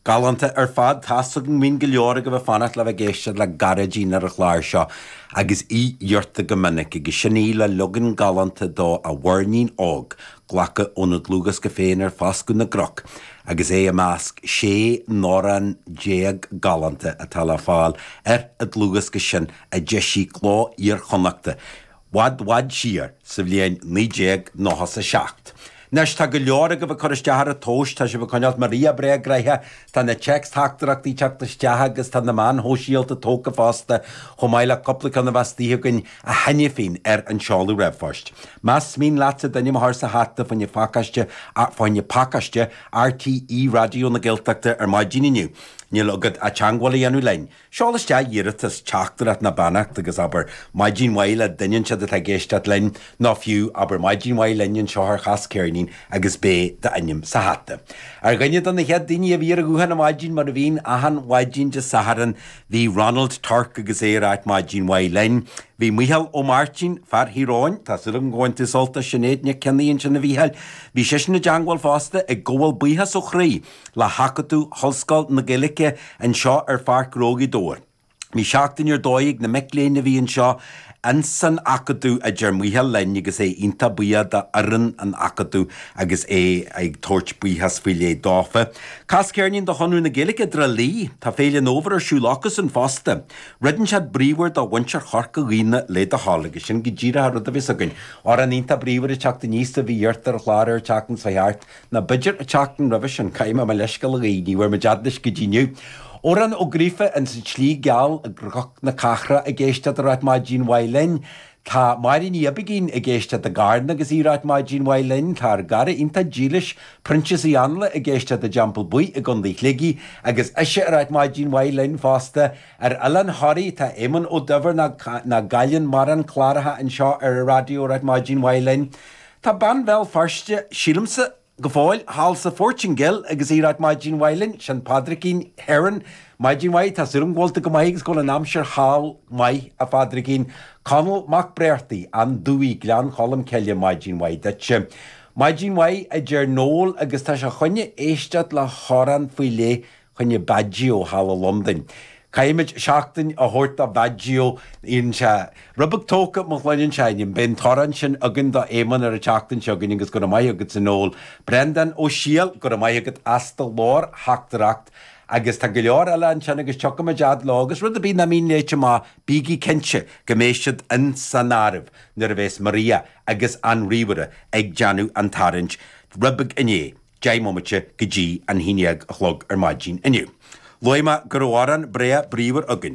Galánta ar fad. Tá's agam go mbíonn go leor agaibh ag fanacht le bheith ag éisteacht le Gearóidín ar an chlár seo, agus í iarrtha go minic, agus sin í le leagan galánta de A Mhuirnín Óg, glactha óna dlúthdhiosca féin Ar Fhoscadh na gCnoc, agus é i measc 16 n-amhrán galánta atá le fáil ar an dlúthdhiosca sin a d'eisigh Cló Iar-Chonnachta, bhfad bhfad siar, sa bhliain naoi déag nócha is a seacht. Anois, tá go leor agaibh ag cur isteach ar an tomhais, tá sibh ag coinneáilt Maria breá gnoitheach, tá na téacs-theachtaireachtaí teacht isteach agus tá na meáin shóisialta tógtha fosta, chomh maith le cúpla ceann a bhí istigh againn a tháinig fríd ar an seoladh ríomhphoist. Más mian leatsa d'ainm a chur sa hata fá choinne, fá choinne pacáiste, RTÉ Raidió na Gaeltachta ar maidin inniu, níl agat ach teangmháil a dhéanamh linn, Seol isteach iarratas teachtaireacht nó beannacht agus abair maidin mhaith le duine inteacht atá ag éisteacht linn, nó fiú, abair maidin mhaith linn anseo ar Chas Ceirnín agus beidh d'ainm sa hata. Ar dhuine de na chéad daoine a bhí ar an ghuthán ar maidin mar a bhíonn achan mhaidin Dé Sathairn bhí Ronald Torc agus é a ráit maidin mhaith linn. Bhí Micheál Ó Máirtín, fear Thír Eoghain, tá súil agam gur bhain tú sult as Sinéad Nic Cionnaith ansin a Mhícheáil, bhí seisean i dteangmháil fosta ag gabháil buíochas ó chroí. le hAcadamh hOllscoil na Gaeilge anseo ar Pháirc Ghnó Ghaoth Dobhair. Bhí seachtain ar dóigh ag na mic léinn a bhí anseo ins an Acadamh, a deir Micheál linn agus é iontach buíoch do fhoireann an Acadaimh agus é ag tabhairt buíochas faoi leith dófa. Cas ceirnín do Chonradh na Gaeilge i dTrá Lí. Tá Féile an Fhómhair ar siúl acusan fosta. Rud inteacht bríomhar do mhuintir Chorca Dhuibhne le do thoil agus sin go díreach an rud a bheas againn. Amhrán iontach bríomhar ag teacht aníos a bhí iarrtha ar an chlár ar an tseachtain seo thart. Ná b'fhéidir an tseachtain roimhe sin, caithfidh mé mo leithscéal a ghabháil, ní bhfuair muid fhad leis go dtí inniu. Odhrán Ó Gríofa ins An tSlí Gheal i gCnoc na Cathrach ag éisteacht a ráit maidin mhaith linn. Tá Máire Ní Oibicín ag éisteacht i gCarna agus í ráit maidin mhaith linn. Tá ár gcara iontach dílis, Proinsias Uí Ainle ag éisteacht i dTeampall Buí i gCondae Shligigh agus ise a ráit maidin mhaith linn fosta. Ar Oileán Thoraí tá Éamonn Ó Duibhir nach gcailleann mórán cláracha anseo ar an raidió a ráit maidin mhaith linn. Tá bean Bhéal Feirste, sílimse, go fóill thall sa Phortaingéil agus í ag ráit maidin mhaith linn, sin Pádraicín Heron. Maidin mhaith, tá súil agam go bhfuil tú go maith agus go bhfuil an aimsir thall maith, a Phádraicín. Conall Mac Bréartaigh, An Dumhaigh, Gleann Cholm Cille, maidin mhaith duitse. Maidin mhaith, a deir Noel agus tá sé fá choinne éisteacht le hamhrán faoi leith choinne Baggio thall i Londain. Caithfimid seachtain a thabhairt do Bhaggio, dhein sé. Roimh ag tógtha mo ghloine anseo ainm, beidh an t-amhrán sin againn do Éamonn ar an tseachtain seo chugainn agus go raibh maith agatsa, a Noel. Breandán Ó Siadhail, go raibh maith agat as do ghlórtheachtaireacht. Agus tá go leor eile ansin agus tiocfaimid fhad leo agus rud ar bith nach mbíonn léite amach, bígí cinnte go mbeidh siad ins an áireamh nuair a bheas Maria agus an ríomhaire ag déanamh an tarraingt roimh an naoi. 10 mbomaite go dtí an haon dhéag a chlog ar maidin inniu. Luaigh mé go raibh amhrán breá bríomhar againn.